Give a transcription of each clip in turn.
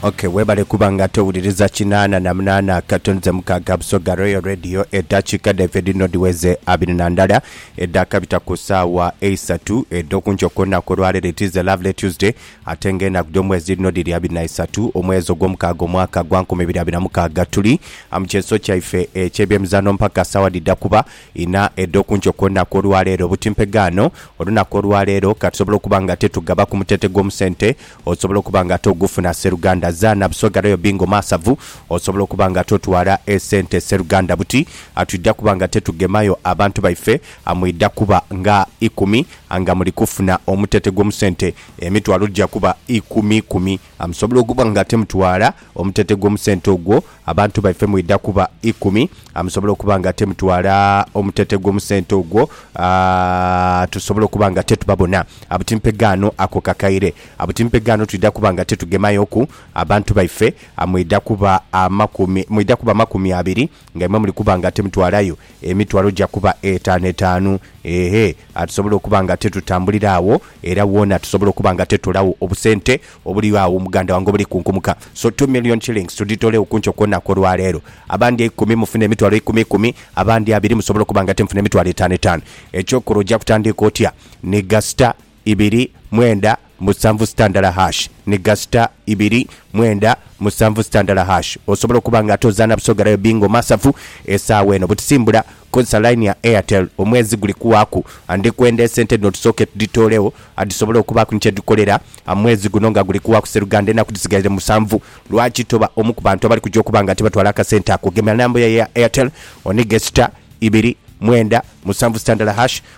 Ok webale kuba nga towuliriza kinaana na munaana katonho ze mukaaga Busoga Royal Radio edhakiika dhaife dhino dhiweze abiri na ndala edhakabita ku saawa eisatu edhokunkyo kwonaku olwaleero it is a lovely Tuesday ate nga enaku dhomwezi dhino dhiri abiri na isatu omwezi ogwomukaaga omwaka gwa nkumi ibiri abiri na mukaaga tuli mu kyeso kyaife ekyebyemizaano mpaka saawa dhidha kuba Inha edho ku nkyo kw'olunaku olwaleero. Buti mpegaano olunaku olwaleero ka tusobole okuba nga ate tugaba ku muteete gw'omusente osobola okuba nga ate ogufuna sseruganda. Zaana buswega royal bingo maasavu osobola okuba nga ate otwala esente sseruganda. Buti twidha kuba nga ate tugemayo abantu baife amwidha kuba nga ikumi nga muli kufuna omuteete gw'omusente emitwalo gya kuba ikumi ikumi. A Musobola okuba nga temutwala omutete gw'omusente ogwo abantu baife mwidha kuba ikumi. A Musobola okuba nga temutwala omutete gw'omusente ogwo a tusobola okuba nga tetubabona. A Butimpe ghano ako kakaire. A Butimpe ghano twidha kuba nga tetugemayoku abantu baife. A Mwidha kuba amakumi mwidha kuba makumi abiri. Nga imwe muli kuba nga timutwalayo emitwalo gya kuba etaanu etaanu, eehhe, atusobola okuba nga titutambulira agho, era woona tusobola okuba nga titolagho obusente obuligho agho muganda wange obuli kunkumuka. So two million shillings tudhitolegho ku nkyo ku lunaku olwa leero. Abandi eikumi mufune emitwalo eikumi ikumi, abandi abiri musobola okuba nga timufuna emitwalo etaanu etaanu. Eky'okola oja kutandiika otya ni gasita. ibiri, mwenda, musanvu sitandala hash ni gasita ibiri, mwenda, musanvu sitandala hash osobola okuba nga ate ozaana Busoga Royal Bingo Masavu esaawa eno butisimbula kozesa line ya Airtel omwezi guli kuwaaku and ndikwenda esente dhino tusooke tudhitoolegho adhisobole okubaaku ni kyedhikolera mwezi guno nga guli kuwaaku Sseruganda enaku dhisigaire musanvu lwaki toba omu ku bantu abali kuja okuba nga tibatwala akasente ako gema number yayo eya Airtel oniige sita, ibiri, mwenda, musanvu sitandala hash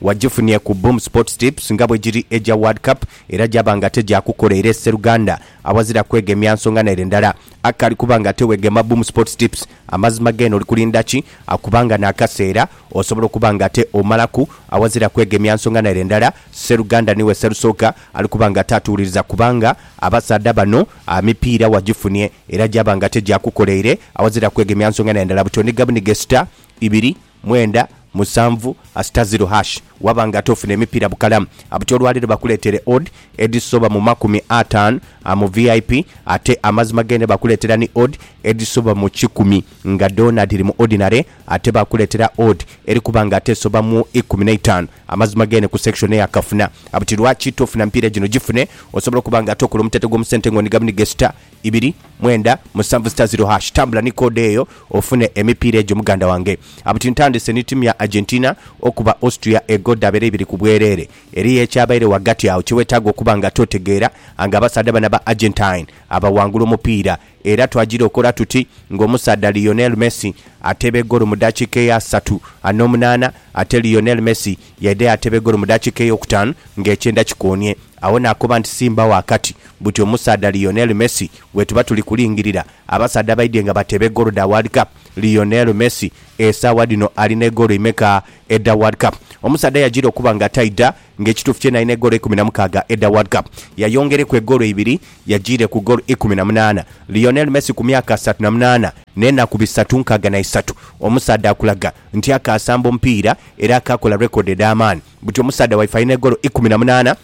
Wajifunye ku Boom Sports Tips nga bwegiri egya World Cup era gyaba nga tegyakukola era eseruganda awazira kwegemya nsonga nere ndala. A Kali kuba nga tewegema Boom Sports Tips, amazima gene oli kulinda ki? A Kubanga n'akaseera osobola okuba nga ate omalaku awazira kwegemya nsonga nere ndala, seruganda niwe serusooka ali kuba nga ate atuwuliriza kubanga abasaadha bano a mipiira wajifunye era gyaba nga tegyakukoleire awazira kwegemya nsonga nere ndala buti onigabuniga esita ibiri Mwenda, musanvu, asita ziro hash waba nga ate ofuna emipiira bukalamu abuti olwaleero bakuleetere odd edhisoba mu makumi ataanu mu vip ate amazima g'ente bakuleetera ni odd edhisoba mu kikumi nga dhoona dhiri mu ordinary ate bakuleetera odd eri kuba nga ate esoba mu ikumi n'eitaanu amazima g'ente ku section eya kafuna abuti lwaki tofuna mipiira gino gifune osobola okuba nga ate okola omutete gw'omu sente nga onigabuniga esita ibiri mwenda musanvu sita ziro hash tambula ni code eyo ofune emipiira egyo muganda wange. Abuti ntandise ni timu ya Argentina okuba Austria ego dhabera ibiri ku bwerere. Eriyo ekyabaire ghagati agho kye wetaaga okuba nga totegeera anga abasaadha bano aba Argentine abawangula omupiira era twagira okola tuti nga omusaadha Lionel Messi ateeba egoolo mu dakiika eya satu anomunaana ate Lionel Messi yaidha yateeba egoolo mu dakiika eyokutaanu nga ekyenda kikoonie. Agho naakoba nti, Simba ghakati buti omusaadha Lionel Messi gwetuba tuli kulingirira. Abasaadha baidhye nga bateeba egoolo dha World Cup. Lionel Messi esaawa dhino alina egoolo imeka edha World Cup? Omusaadha yajiira okuba nga taidha nga ekituufu kyene alina egoolo ikumi na mukaaga edha World Cup. Yayongereku egoolo ibiri yajiire ku goolo ikumi na munaana. Lionel Messi ku myaka asatu na munaana n'enaku bisatu nkaaga na isatu, omusaadha akulaga nti akaasamba omupiira era akaakola rekodi edh'amaani. Buti omusaadha waife alina egoolo ikumi na munaana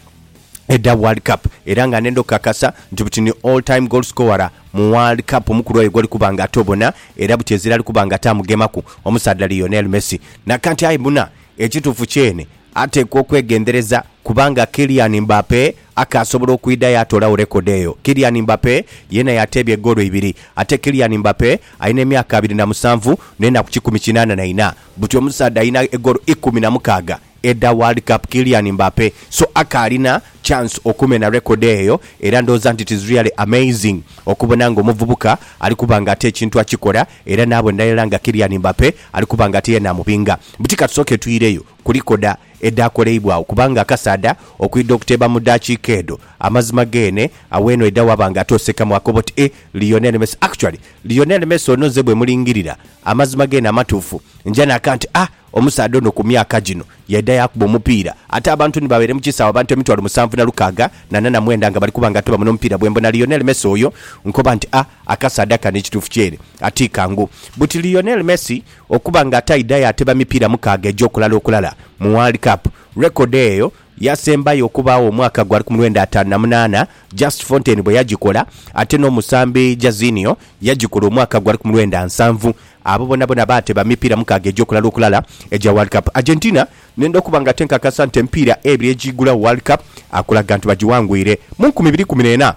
edha World Cup era nga nenda okukakasa nti buti ni all time goal scorer mu World Cup omukulu oyo gwoli kuba nga ate obona era buti ezira ali kuba nga ate amugemaku omusaadha Lionel Messi. Nakanti aye buna ekituufu kyene atekwa okwegendereza kubanga Kylian Mbappe akaasobola okwidha yaatoolagho record eyo. Kylian Mbappe yeena yateebya egoolo ibiri ate Kylian Mbappe alina emyaka abiri na musanvu n'enaku kikumi kinaana na ina. buti omusaadha alina egoolo ikumi na mukaaga edha World Cup, Kylian Mbappe, so akaalina chance okumena record eyo era ndhooza nti it's really amazing okubona nga omuvubuka ali kuba nga ate ekintu akikola era naabonera irala nga Kylian Mbappe ali kuba nga ate yeena amubinga. Buti katusooke twireyo ku likoda edhaakoleibwagho kubanga akasaadha okwidha okuteeba mu daakiika edho amazima geene, agho eno aidha waba nga ate osekamu akoba oti eh, Lionel Messi actually Lionel Messi ono nze bwemulingirira amazima gene amatuufu nja naka nti a omusaadha ono ku myaka gino yaidha yakuba omupiira ate abantu ni babaire mu kisaawe abantu emitwalo musanvu na lukaaga na nana mwenda nga bali kuba nga tibamuno mupiira bwembona Lionel Messi oyo nkoba nti a akasaadha kano ekituufu kyere ati kangu buti Lionel Messi okuba nga ataidha yateba mipiira mukaaga egy'okulala okulala mu World Cup record eyo Yasembayo okubaagho omwaka gwa likumulwenda ataanu na munaana, Just Fontaine bwe yagikola, ate n'omusambi Jazinho yagikola omwaka gwa likumulwenda nsanvu. Abo bonabona baateba mipiira mukaaga egy'okulala okulala egya World Cup. Argentina nenda okuba nga tenkakasa nti emipiira ebiri egy'igulagho World Cup akulaga nti bagiwangwire mu nkumi ibiri ikumi n'ena.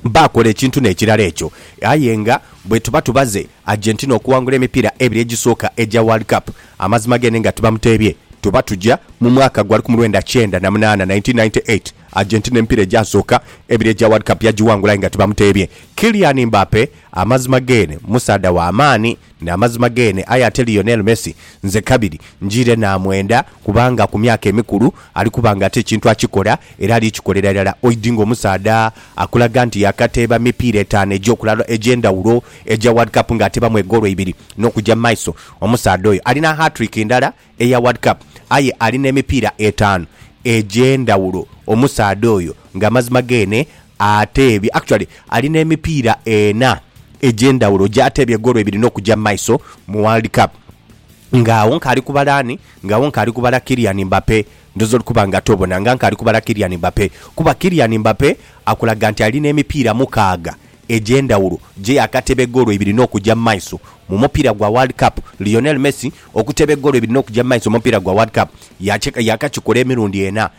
baakola ekintu n'ekirala ekyo. Aye nga bwetuba tubaze Argentina okuwangula emipiira ebiri egisooka egya World Cup, amazima gene nga tibamuteebye, tuba tuja mu mwaka gwa lukumi lwenda kyenda na munaana, 1998. Argentina emipiira egyasooka ebiri egya World Cup yagiwangula aye nga tibamuteebye. Kylian Mbappe amazima gene musaadha wa maani. N'amazima geene, aye ate Lionel Messi nze kabiri njiire naamwenda kubanga ku myaka emikulu ali kuba nga ate ekintu akikola era ali kikolera irala oidi ng'omusaadha akulaga nti yaakateeba mipiira etaanu egy'okulalwa egy'endhawulo egya World Cup ng'ateebamu egoolo ibiri n'okuja mu maiso. Omusaadha oyo alina hat-trick ndala eya World Cup aye ali n'emipiira etaanu egy'endhawulo omusaadha oyo nga amazima geene ateebye actually ali n'emipiira ena egy'endhawulo gy'ateebye goolo ibiri n'okugya mu maiso mu World Cup. Nga agho nkaali kubala ani? Nga agho nkaali kubala Kylian Mbappe. Ndhooza oli kuba nga tobona nga nkaali kubala Kylian Mbappe kuba Kylian Mbappe akulaga nti ali n'emipiira mukaaga egy'endhawulo gye yaakateba egoolo ibiri n'okugya mu maiso mu mupiira gwa World Cup. Lionel Messi okuteba egoolo ibiri n'okugya mu maiso mu mupiira gwa World Cup yaakakikola emirundi ena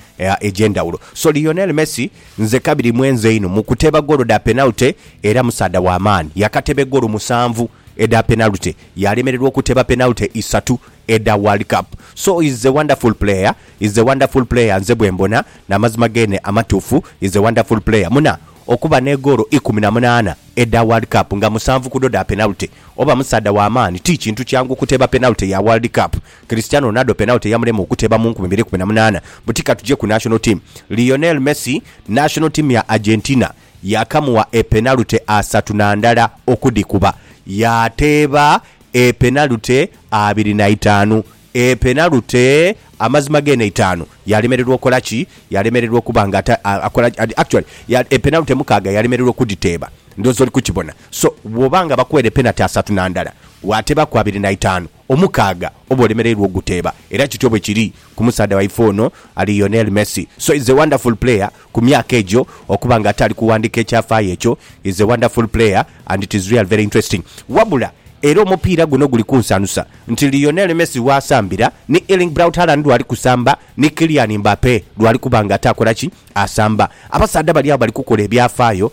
egy'endhawulo. So Lionel Messi nze kabiri mwenzi einho mu kuteba goolo dha penalty era musaadha wa maani. Yaakateba egoolo musanvu edha penalty, yaalemererwa okuteba penalty isatu edha World Cup. So is a wonderful player, is a wonderful player nze bwe mbona, n'amazima geene amatuufu, is a wonderful player. Muna okuba ne goolo ikumi na munaana edha World Cup nga musanvu ku dho dha penalty. Oba musaadha wa maani, ti kintu kyangu okuteeba penalty ya World Cup. Cristiano Ronaldo penalty yamulema okuteeba mu nkumi ibiri ikumi na munaana. Buti ka tuje ku National Team. Lionel Messi, National Team ya Argentina yakamuwa e penalty asatu na ndala okudhikuba. Yaateeba e penalty abiri na itaanu E penalty, amazima geene itaanu, yalemererwa okola ki? Yalemererwa okuba nga ata, a, akola ki? Adi, actually, ya, e penalty mukaaga yalemererwa okudhiteeba. Ndhooza oli kukibona. So, bw'oba nga bakuweere penalty asatu na ndala, waateebaku abiri na itaanu, omukaaga oba olemereirwa okuguteeba. Era kityo bwe kiri ku musaadha waife ono ali Lionel Messi. So, he's a wonderful player, Ku myaka egyo okuba nga ataali kuwandiika ekyafaayo ekyo is a wonderful player and it is real very interesting. Wabula era omupiira guno guli kunsanusa nti Lionel Messi w'asambira ni Erling Braut Haaland lw'ali kusamba ni Kylian Mbappe lw'ali kuba nga ataakola ki? Asamba. Abasaadha bali agho bali kukola ebyafaayo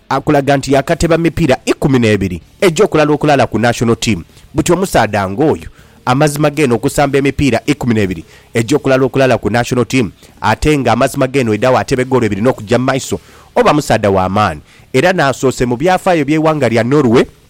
Akulaga nti yaakateba mipiira ikumi n'ebiri egy'okulala okulala ku National Team. Buti omusaadha ng'oyo amazima geene okusamba emipiira ikumi n'ebiri egy'okulala okulala ku National Team ate nga amazima geene oidhagho atebe goolo ibiri n'okugya mu maiso, oba musaadha wa maani era n'asoose mu byafaayo by'eighanga lya Norway.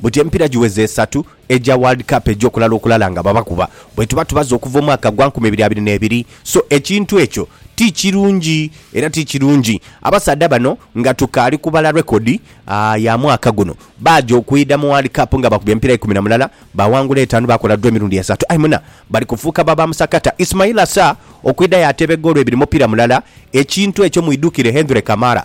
Buti emipira giweze esatu egya World Cup egy'okulala okulala nga babakuba bwetuba tubaze okuva omwaka gwa nkumi ibiri abiri n'ebiri so ekintu ekyo ti kirungi era ti kirungi. Abasaadha bano nga tukaali kubala record ya mwaka guno baaja okwidha mu World Cup nga bakubye emipira ikumi na mulala baawangula etaanu baakola dro emirundi esatu aye muna bali kufuuka ba bamusakata. Ismail Assar okwidha yaateeba egoolo ibiri mupira mulala ekintu ekyo mwidhukire Hendre Camara.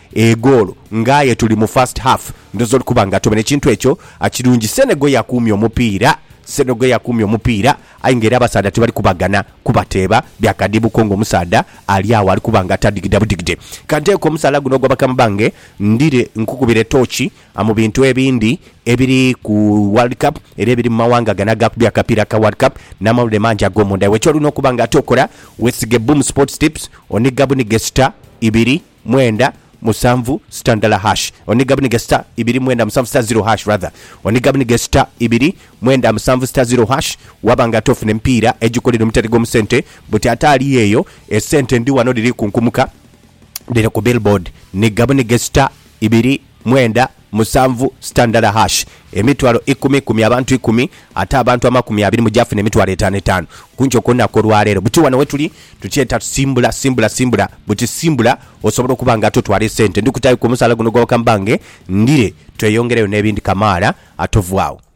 egoolo nga aye tuli mu first half ndhooza oli kuba nga atomenhe kintu ekyo akirungi Senegal yakuumye omupiira Senegal yakuumye omupiira aye nga era abasaadha tibali kubaghana kubateeba bya kadiibu ko nga omusaadha ali agho ali kuba nga atadigida budigide Kanteeke omusaala guno ogwa bakama bange ndhire nkukubire tooki mu bintu ebindi ebiri ku World Cup era ebiri mu mawanga gano agaakubye akapiira ka World Cup n'amawulire mangi ag'omunda iwe ky'olina okuba nga ate okola weesige Boom Sports Tips onigga bunigge star ibiri mwenda musanvu sita ndala hash oniga buniga sita ibiri mwenda musanvu sita ziro hash rather oniga buniga sita ibiri mwenda musanvu sita ziro hash waba nga ate ofuna emipiira egikola eno omutere gwomu sente buti ate ali eyo esente ndi wano dhiri kunkumuka dhiri ku billboard niga buniga sita ibiri Mwenda, musanvu, sitandala hash emitwalo ikumi ikumi abantu ikumi ate abantu amakumi abiri mu gyafuna emitwalo etaano etaano kunkyo kulunaku olwaleero buti wano wetuli tukyeta tusimbula simbula simbula buti simbula osobola okuba nga ate otwala esente ndikutayo ku omusaala guno gwa bakama bange ndire tweyongereyo nebindi kamaala ate ovaawo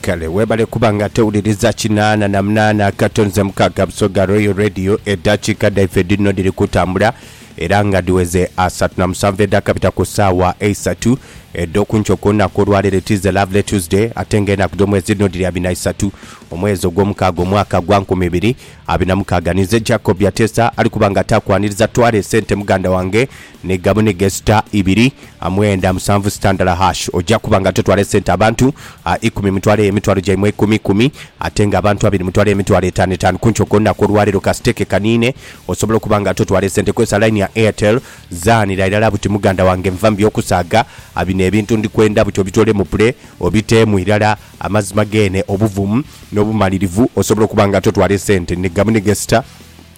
Kale webale kuba nga tewuliriza kinaana na munaana akato nze mukaaga Busoga Royal Radio. Eddakiika dhaife dhino dhiri kutambula era nga dhiweze asatu na musanvu edhakabita ku ssaawa eisatu edh'oku nkyo ku lunaku olwaleero. It is a lovely Tuesday ate nga enaku dh'omwezi dhino dhiri abiri na isatu omwezi ogw'omukaaga omwaka gwa nkumi ibiri abiri na mukaaga. Ninze Jacob Byatesa ali kuba nga taakwaniriza twale sente muganda wange Ni gamu ni gesita ibiri a mwenda musanvu sitandala hash. Oja kuba nga totwala esente abantu a ikumi mutwaleyo emitwalo gyaimwe eikumi ikumi ate nga abantu abiri mutwaleyo emitwalo etaanu etaanu ku nkyo kwolunaku olwaleero ka siteeke kaniine. Osobola okuba nga totwala esente kozesa line ya Airtel. Zaanira irala buti muganda wange nva mu by'okusaaga a bino ebintu ndi kwenda buti obitoole mu pule obiteemu irala amazima geene obuvumu n'obumalirivu. Osobola okuba nga totwala esente. Ni gamu ni gesita.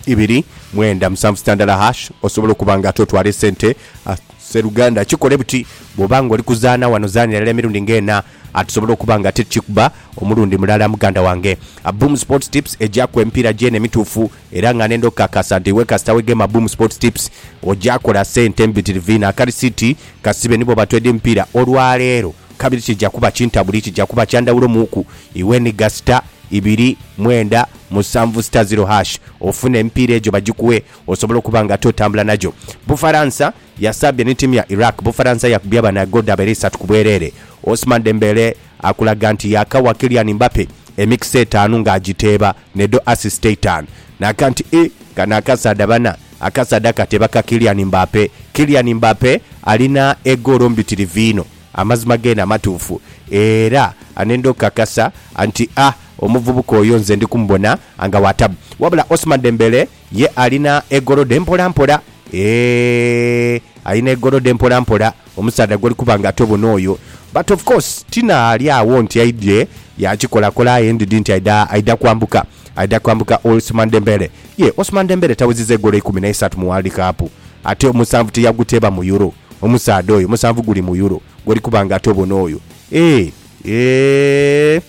ibiri mwenda musanvu sitandala hash osobola okuba nga ate otwala esente a. Sseruganda kikole buti, bw'oba nga oli kuzaana wano zaanira irala emirundi nga ena a tusobole okuba nga ate tukikuba omulundi mulala muganda wange. A Boom Sports Tips egyaku emipiira gyena emituufu era nga n'enda okukakasa nti iwe kasita wegema Boom Sports Tips ogya kola sente mbitirivu inho. Akarisiti kasibe ni bw'oba twede mipiira olwaleero. Kabiri kija kuba kintabuli, kija kuba kya ndhawulo muuku iwe ni gasita ibiri mwenda musanvu sita ziro hash ofune emipiira egyo bagikuwe osobole okuba nga ate otambula nagyo. Bufaransa yasaabye ni ttiimu ya Iraq. Bufaransa yakubye banayo ggoolo dhabaire isatu ku bwereere. Ousmane Dembele akulaga nti yaakawa Kylian Mbappe emikisa etaanu ng'agiteeba n'edho assist eitaanu. Naaga nti, Ih, kano akasaadha bana, akasaadha kateeba ka Kylian Mbappe. Kylian Mbappe alina egoolo mbitirivu inho. Amazima geene amatuufu, era anenda okukakasa nti a omuvubuka oyo nze ndi kumubona nga wa tabu. Wabula Ousmane Dembele ye alina egolode mpolampola. Eeh, alina egolode mpolampola omusaadha gw'oli kuba nga tobona oyo. But of course Tina ali agho nti aidhye yaakikolakola aye ndidhi nti aidha aidha kwambuka, aidha kwambuka Ousmane Dembele. Ye Ousmane Dembele tawezezza egolo ikumi na isatu mu World Cup, ate omusanvu tiyaguteeba mu Euro. Omusaadha oyo musanvu guli mu Euro gwoli kuba nga ate obona oyo eeh eeh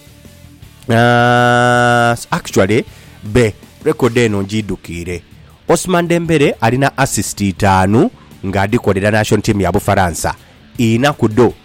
aah actually be record eno ngidhukiire. Ousmane Dembele alina assist itaanu nga adhikolera Nation Team ya Bufaransa, inha ku dho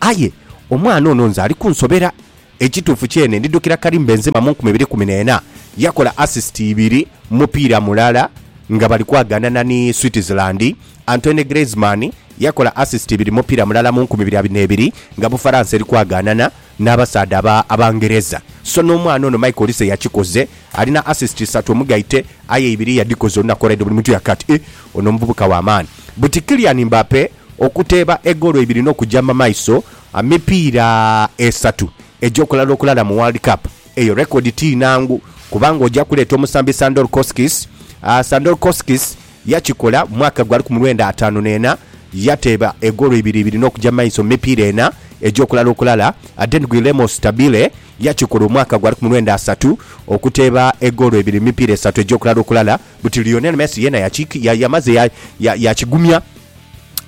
Aye omwana ono nze ali kunsobera. Ekituufu kyene ndidhukira Karim Benzema mu nkumi ibiri kumi na ena, yakola assist ibiri mu mupiira mulala nga bali kwagaanana ni Switzerland. Antoine Griezmann yakola assist ibiri mu mupiira mulala mu nkumi ibiri abiri n'ebiri nga Bufaransa eri kwagaanana n'abasaadha aba Abangereza. So n'omwana ono Michael Olise yakikoze, alina assist isatu omugaite aye ibiri yadhikoze olunaku olw'eidho buli muntu yaka ati, Eeh, ono muvubuka wa maani. Buti Kylian Mbappe. Okuteeba egoolo ibiri n'okuja mu maiso amipiira esatu egy'okulala okulala mu World Cup, eyo rekodi ti nangu kuba ng'oja kuleeta omusambi Sandor Kostis. Sandor Kostis yakikola mu mwaka gwa lukumi lwenda ataanu n'ena, yateeba egoolo ibiri ibiri n'okuja mu maiso mu mipiira ena egy'okulala okulala. Ate ni Guillermo Stabile yakikola omwaka gwa lukumi lwenda asatu, okuteeba egoolo ibiri mu mipiira esatu egy'okulala okulala. Buti Lionel Messi yeena yamaze yakigumya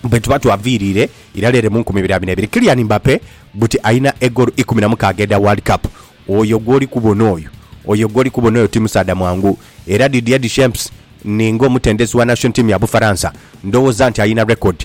bwetuba twaviiriire irala ere mu nkumi ibiri abiri n'ebiri. Kylian Mbappe buti alina egoolo ikumi na mukaaga edha World Cup. Oyo gw'oli kubona oyo, oyo gw'oli kubona oyo ti musaadha mwangu. Era Didier Deschamps, ni ng'omutendesi wa national team ya Bufaransa, ndowooza nti alina record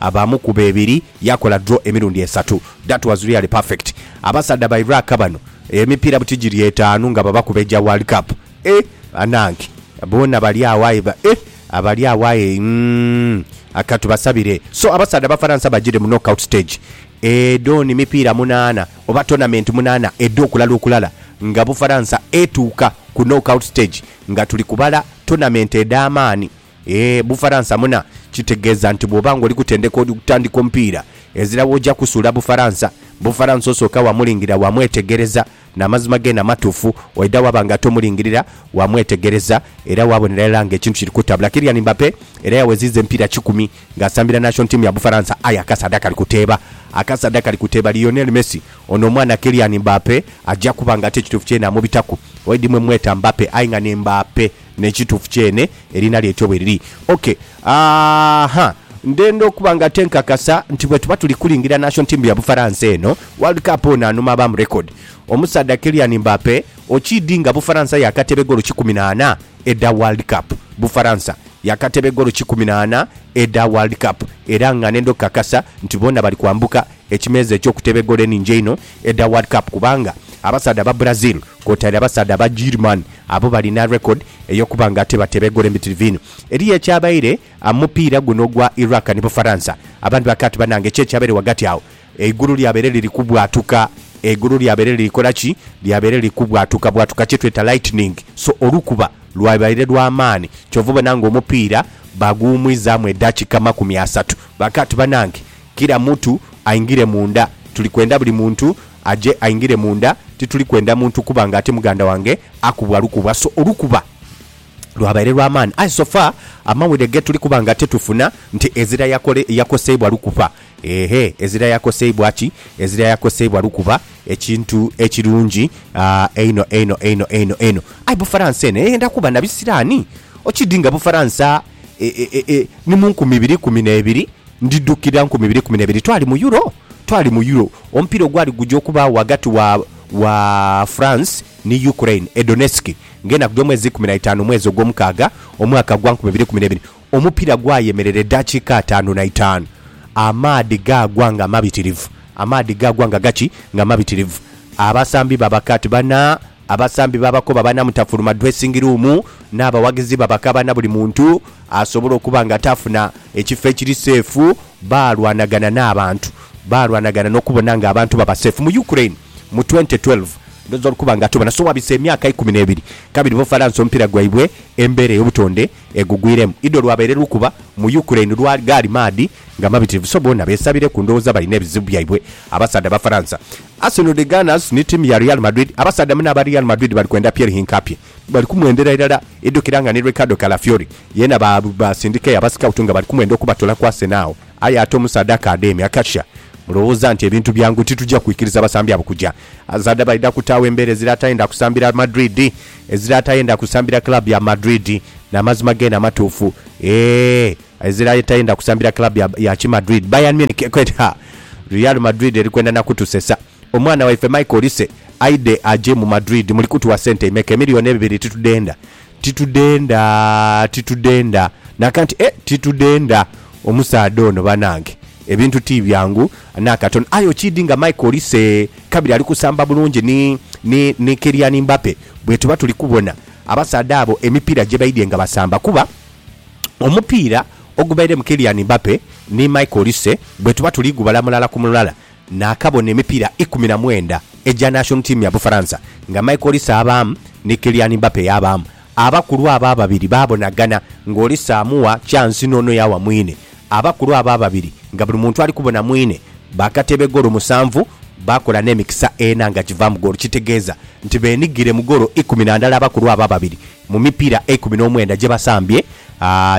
Aba amukuba ebiri yakola draw emirundi esatu that was really perfect abasadha ba Iraq bano emipira buti giri etaanu nga babakuba egya world cup eeh banange boona bali agho aye eeh abali agho aye umm katubasabire so abasadha abafaransa bagire mu knock out stage edhon mipiira munaana oba tournament munaana edho kulala okulala nga bufaransa etuuka ku knock out stage nga tuli kubala tournament edhamaani Eeh Bufaransa muna, kitegeeza nti bw'oba ng'oli kutendeka okutandika omupiira, ezira w'oja kusuula Bufaransa. Bufaransa osooka waamulingirira waamwetegereza n'amazima geene amatuufu, oidha waaba nga tomulingirira, waamwetegereza era waabonera irala ng'ekintu kiri kutabula. Kylian Mbappe era yaweziiza emipiira kikumi ng'asambira nation team ya Bufaransa aye akasaadha kali kuteeba. Akasaadha kali kuteeba Lionel Messi. Ono omwana Kylian Mbappe aja kuba ng'ate ekituufu kyeene amubitaku. Oidhi mwe mmweta Mbappe aye nga ni Mbaape. N'ekituufu kyene eriina lyetyo bwe liri. Ok. Aa-ha. Ndenda okuba nga ate nkakasa nti bwe tuba tuli kulingira national team ya Bufaransa eno, World Cup ono anuma abamu record. Omusaadha Kylian Mbappe okiidhi nga Bufaransa yaakateeba egoolo kikumi na ana edha World Cup. Bufaransa yaakateeba egoolo kikumi na ana edha World Cup era nga nenda okukakasa nti boona bali kwambuka Ekimeeza eky'okutebe goolo enhingi einho edha World Cup kubanga abasaadha aba Brazil kwotaire abasaadha aba German abo balina record ey'okuba nga ate batebe goolo embitirivu inho. Eriyo ekyabaire mu mupiira guno ogwa Iraq ni Bufaransa. Abandhi bakaaba ati banange ki ekyabaire ghagati agho? Eigulu lyabaire liri kubwatuka, eigulu lyabaire liri kola ki? Lyabaire liri kubwatukabwatuka kye tweta lightning. So olukuba lwabaire lwa maani kyova obona nga omupiira baguwumwizaamu edakika makumi asatu. Bakaaba ati banange Kira mutu aingire munda. Tuli kwenda buli muntu aje aingire munda. Tituli kwenda muntu kuba nga ati muganda wange akubwa lukuba. So olukuba lwabaire lwa maani aye so far amawulire ge tuli kuba nga tetufuna nti ezira yakole, yakoseibwa lukuba. Ehe, ezira yakoseibwa ki? Ezira yakoseibwa lukuba, ekintu ekirungi einho einho einho einho einho. Aye Bufaransa eno eyenda kuba na bisiraani. Okidhi nga Bufaransa e, e, e, e, ni mu nkumi ibiri ikumi n'ebiri, ndidhukira nkumi ibiri ikumi n'ebiri, twali mu Euro, twali mu Euro, omupiira ogwali guja okubaagho ghagati wa, wa France ni Ukraine e Donetsk, ng'enaku dh'omwezi ikumi na itaanu omwezi ogw'omukaaga omwaka gwa nkumi ibiri ikumi n'ebiri. Omupiira gwayemerera edaakiika ataanu na itaanu, amaadhi gaagwa nga mabitirivu, amaadhi gaagwa nga gaki? Nga mabitirivu. Abasambi baba kati bana Abasambi baabakoba banamutafuluma dressing room n'abawagizi babakaba na buli muntu asobola okuba nga taafuna ekifo ekiri seefu. Baalwanagana n'abantu, baalwanagana n'okubona nga abantu baba seefu. Mu Ukraine mu twente twelve, ndhooza olukuba nga tubona, so wabise emyaka ikumi n'ebiri kabiri Bufaransa omupiira gwaibwe embeera ey'obutonde. egugwiremu. Idho lwabaire lukuba mu Ukraine lwa gaali maadhi nga mabitirivu so boona beesabireku ndhowooza balina ebizibu byaibwe abasaadha Abafaransa. Arsenal the Gunners ni tiimu ya Real Madrid Abasaadha mune aba Real Madrid bali kwenda Pierre Hincapie. Bali kumwendera irala idhukira nga ni Ricardo Calafiori yeena baasindikayo aba scout nga bali kumwenda okubatoola ku Arsenal agho. Aye ate omusaadha akaadhemya akatia, Mulowooza nti ebintu byangu? Tituja kwikiriza basambi abo kuja. Abasaadha baidha kutaagho embeera ezira atayenda kusambira Madrid, ezira atayenda kusambira club ya Madrid. N'amazima geene amatuufu. Eeh, ezira atayenda kusambira club ya ya ki Madrid, Bayern Munich, ekwenda ha! Real Madrid eri kwenda na kutusesa. Omwana waife Michael Olise aidhe aje mu Madrid. Muli kutuwa sente imeka? Emiliyoni ebibiri titudhenda. Titudhenda. Titudhenda. Naka nti, Eh, titudhenda! Omusaadha ono banange ebintu ti byangu n'akatono. Aye okiidhi nga Michael Olise kabiri ali kusamba bulungi ni, ni, ni Kylian Mbappe bwetuba tuli kubona abasaadha abo emipiira gye baidhye nga basamba. Kuba omupiira ogubaire mu Kylian Mbappe ni Michael Olise bwetuba tuli gubala mulala ku mulala, Naakabona emipiira ikumi na mwenda egya national team ya Bufaransa nga Michael Olise abaamu ni Kylian Mbappe yaabaamu. Abakulu abo ababiri baabonagana ng'Olise amuwa kyansi n'ono yaawa mwine. Abakulu abo ababiri nga buli muntu ali kubona mwine baakata ebegolo musanvu baakola n'emikisa ena nga givaamu goolo kitegeeza nti beenigire mu goolo ikumi na ndala abakulu abo ababiri mu mipiira eikumi n'omwenda gye basambye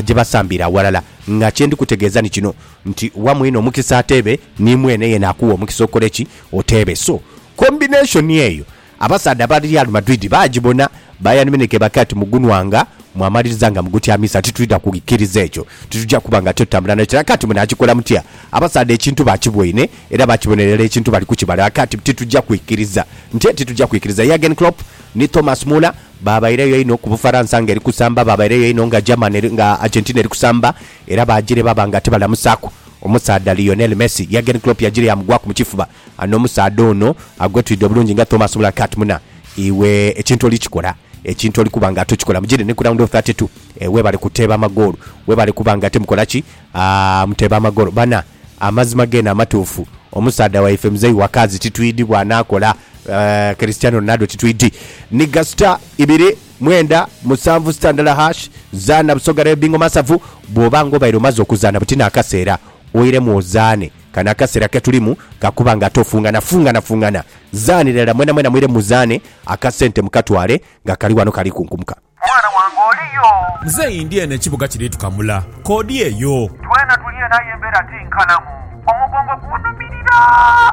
gye basambiire aghalala nga kye ndi kutegeeza ni kino Nti wa mwine omukisa ateebe, ni mwene yena akuwa omukisa okole ki? Oteebe. So, combination eyo abasaadha aba Real Madrid baagibona. Bayern Munich ebake ati, Mugunwanga mwamaliriza nga mugutyamiza, titwidha kukiriza ekyo. Titugya kuba nga titutambula nakyo. Ebake ati, Munaakikola mutya? Abasaadha ekintu baakiboine era baakibonera irala ekintu bali kukibala. Ebake ati, Titugya kwikiriza. Mutye? Titugya kwikiriza. Jurgen Klopp ni Thomas Muller baabaireyo einho ku Bufaransa nga eri kusamba, baabaireyo einho nga Germany, nga Argentina eri kusamba, era baajire baba nga tibalamusaaku. Omusaadha Lionel Messi, Jurgen Klopp yaajire yaamugwaku mu kifuba. Ano omusaadha ono agwetwidde obulungi nga Thomas Muller Kat Muna, iwe ekintu oli kikola, ekintu oli kuba nga tokikola. Mujire ni ku round of thirty two webale kuteeba amagoolo, webale kuba nga timukola ki? Aah muteeba amagoolo bana. Amazima geene amatuufu, omusaadha waife Mzei wa Kazi titwidhi bw'anaakola. Eeh Cristiano Ronaldo titwidhi. Ni gasita ibiri. Mwenda, musanvu, sita ndala hash, zaana Busoga Rail Bingo Masavu Bw'oba ng'obaire omaze okuzaana buti n'akaseera oiremu ozaane. Kano akaseera ke tulimu ka kuba nga ate ofungana fungana fungana. Zaanira irala mwena mwena mwire muzaane akasente mukatwale nga kali wano kali kunkumuka. Mwana wange oli yo? Muzeeyi ndi eno ekibuga kiri tukamula. K'odi eyo. Twena tuli eno aye embeera ti nkalamu. Omugongo gunhumirira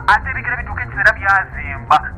ate ebigere bituuka ekiseera byazimba.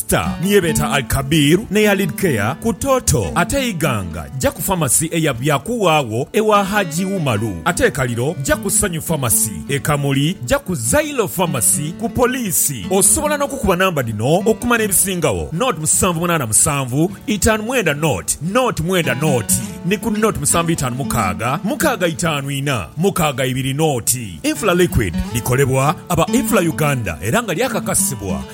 Star ni ye beeta Al Kabir n'eya Lid Care ku Toto ate Iganga ja ku Pharmacy eya Byakuwawo ewa Hajji Umaru ate e Kaliro ja ku Sanyu Pharmacy. E Kamuli ja ku Zailo Pharmacy ku Poliisi. Osobola n'okukuba namba dhino okumanya ebisingagho, nought musanvu munaana musanvu itaanu mwenda nought nought mwenda nought ni ku nought musanvu itaanu mukaaga mukaaga itaanu ina mukaaga ibiri nought. Infla Liquid likolebwa aba Infla Uganda era nga lyakakasibwa